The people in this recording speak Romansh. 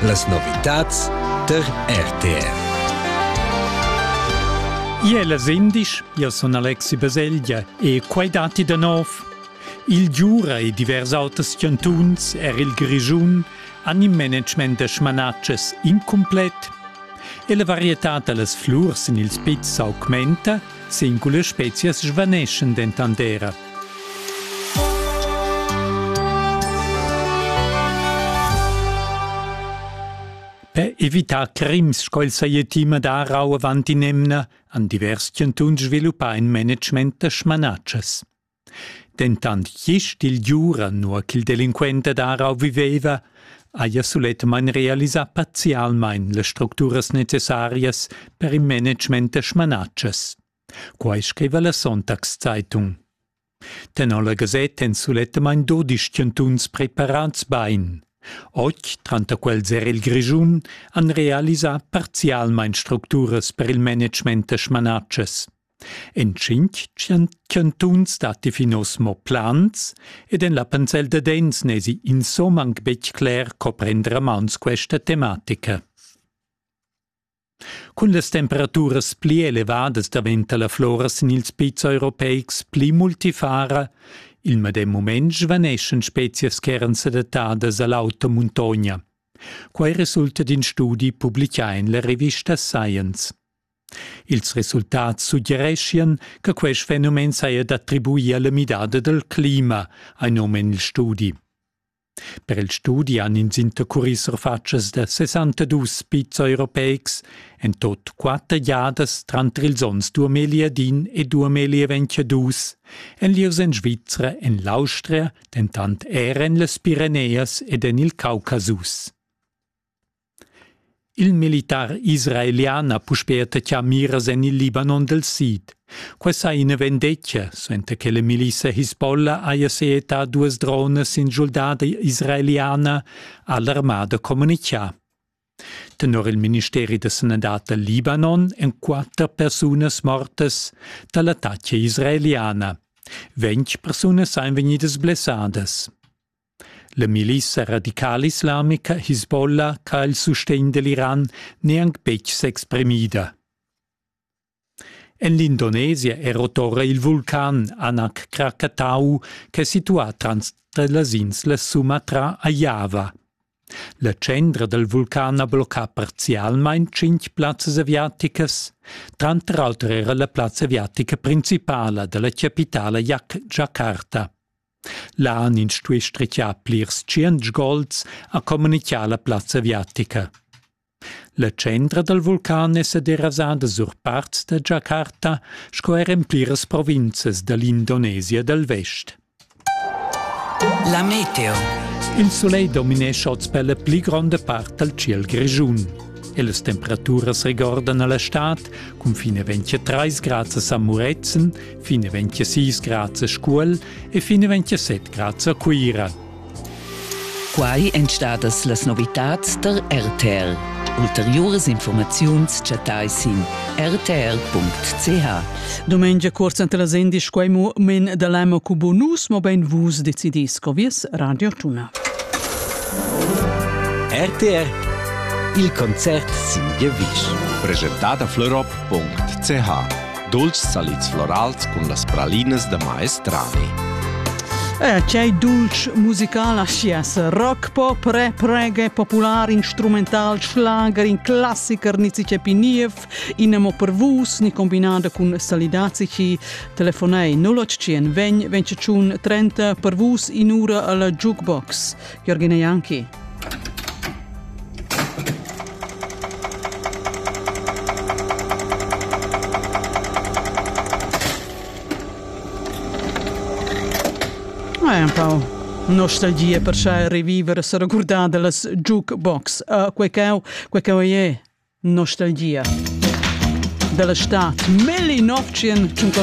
Las novitads tar RTR. Ia è las indisch, io sun Alexi Baselgia e quai datti da nov. Il Giura e divers auters chantuns, er il Grischun, han in management da smanatschas incumplet e la varietà da las flurs en ils pizs s'augmenta Singulas spezias svaneschan dentant era. Per evitar crims sco il saja tima da rau avant in'emna han divers chantuns sviluppà in management da smanatschas. Dentant gist il Giura, nua ch'il delinquent ad Aarau viveva, haja sulettamain realisà parzialmain las structuras necessarias per il management da smanatschas. Quai scriva la Sonntagszeitung. Tenor la gasetta èn sulettamain dudisch chantuns preparads bain. Oz, tranter quels er il Grischun, han realisà parzialmain structuras per il management da smanatschas. En tschintg chantuns datti fin oz mo plans ed en la Pansel da Dens n'èsi insomma anc betg cler co prender a mauns questa tematica. Cun las temperaturas pli elevadas daventa la flora sin ils pizs europeics pli multifara. Il medem mument svaneschan spezias ch'eran sedattadas a l'auta muntogna. Quai resulta d'in studi publicà en la rivista Science. Ils resultats suggereschian che quest fenomen saja d'attribuir alla midada dal clima, ha num en il studi. Per il studi han ins intercurì surfatschas da 62 pizs europeics, en tot quatter giadas tranter ils onns 2010 e 2022, en lieus en Svizra, en l'Austria, dentant er en las Pireneas ed en il Caucasus. Il militar israelian ha puspè attaccà miras en il Libanon dal sid. Quai sa ina vendetga, suenter che la milissa Hisbollah haja seetà duas dronas sin schuldada israeliana, ha l'armada communitgà. Tenor il ministeri da sanadad dal Libanon èn quatter persunas mortas da l'attacca israeliana. Ventg persunas èn vegnidas blessadas. La milissa radicalislamica Hisbollah ha il sustegn dell'Iran neanc betg s'exprimida. En l'Indonesia è rotora il vulcan Anak Krakatau ch'è situà trans las ins la Sumatra a Java. La tschendra dal vulcan ha bloccà parzialmain tschintg plazzas aviaticas. Tranter auter era la plazza aviatica principala da la chapitala Jakarta. Là han ins stuì strichar plirs tschient sgols, ha communitgà la plazza aviatica. La centra dal vulcan è sa derasada sur parts da Giacarta sco er en pliras provinzas da l'Indonesia dal vest. La meteo. Il sulegl dominescha oz per la pli gronda part dal ciel grischun e las temperaturas regordan a la stad cun fin a 23 grads a San Murezzan Fin e 26 grads a Scuol e fin e 27 grads a Cuira. Quai èn stadas las novitads da RTL. Ulteriuras informaziuns chattai sin rtr.ch. Domengia cuorza ante la sendi squaimu men da lama cu bonus mo ben vus decidis co vies radio tuna. RTR Il concert sin Gevisch. Presentada florop.ch Dulcis salids florals cun las pralinas da maestrani. Eh, c'è dulce musicale a chies, rock, pop, rap, reggae, popular, instrumental, schlager, in classiker ni ci niev, in amo per vus, ni combinada cun salidazici, telefonei 081 20 25 30 per vus in ura alla jukebox. Jürgen Janki. Hai un po' nostalgia per schai reviver e se recordar dellas jukebox. Uh, quei cau, quei cau è nostalgia. Della stat 1950